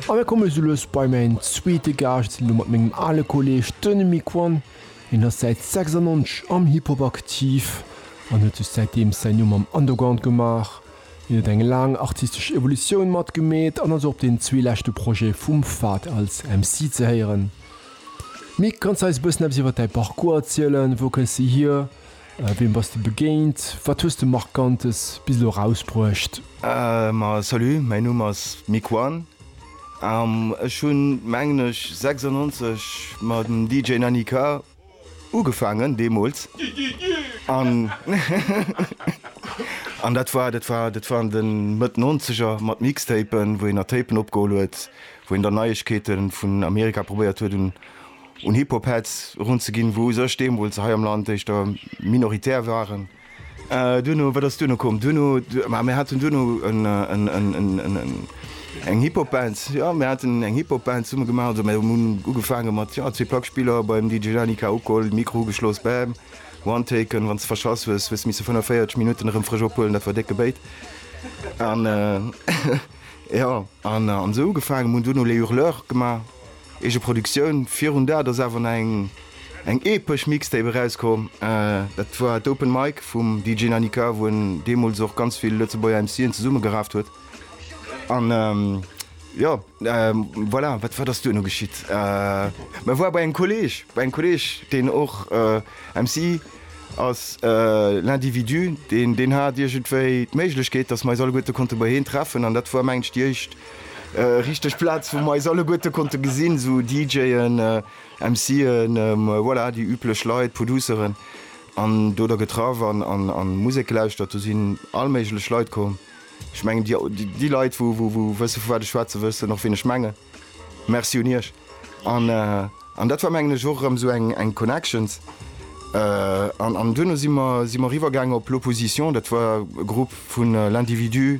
A mir komme soulos bei mäin zweete Gaascht, elo mat mengem ale Kolleeg, den Mick One. Hien ass säit 96 am Hip Hop aktiv an huet sech säitdeems säin Numm am Underground gemaach. Hien huet eng laang artistesch Evolutioun matgemeet an ass och op den zwee leschte Projete vum Fahd als MC ze héieren. Mick, kanns de eis e bëssen eppes iwwer däi Parcours erzielen? Wou kënns de hier? Wiem bass de begéint? Wat hues de Markantes bis elo erausbruecht? Ma salut, mäin Numm ass Miquan an ech hunn mengen ech 96 mam DJ Nanny K ugefaangen deemools an an dat war dat war dat waren de Mëtt Nonzeger mat Mixtapen wou een nach Tapen opgeholl huet wou een dann Neiegkeete vun Amerika probéiert huet un un Hip-Hop-Heads erunzeginn, wou u sech deemools hei am Land éischter minoritär waren. Duerno, wat ass duerno komm? Duerno, ma mir haten duerno eng Hip-Hop-Band, jo, mir haten eng Hip-Hop-Band zesumme gemaach. Also mir hunn ugefaange mat, jo, zwee Plackspiller beim DJ Lani K ugeholl, Mikro ugeschloss, bam, one taken, wann s de verschass hues, hues de misse 45 Minutten erëm frësch ophuelen, dat war décke Béit. An, jo, an esou ugefaangen, mir hunn duerno Les Hurleurs gemaach. Eegeproduktioun, virun dat ass awer nach eng epesch Mixtape erauskomm, dat war d'Open Mic vum DJ Nanika, wou en deemools och ganz vill Lëtzebuerger MC'en zesummegeraaft huet an jo voilà. Wat wat ass duerno geschitt? Mä war bei engem Kolleeg, bei engem Kolleeg deen och MC ass, L'Individu, deen deen hat iergendwéi d'Méiglechkeet, datt mer eis alleguerte konnte bei heen treffen an dat war mengen ech déi éischt Richteg Plaz wou mer eis alleguerte konnte gesinn, sou DJen, MCen, voilà déi üblech Leit, Produceren an do der getraff an an Musek gelauschtert. Do sinn all méiglech Leit komm. Ech mengen déi déi Leit wou wou wësse vu wat ech schwätzen, wëssen och wien ech mengen. Merci un iech an an dat war mengen ech och erëm sou eng eng Connections an an duerno si mer si mer riwwer gaangen op L'Opposition, dat war e Grupp vun L'Individu,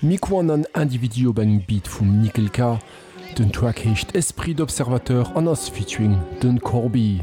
Nick One an Individu op engem Beat vum Nickel K. Den Track heescht Esprit d'observateur an ass featuring den Corbi.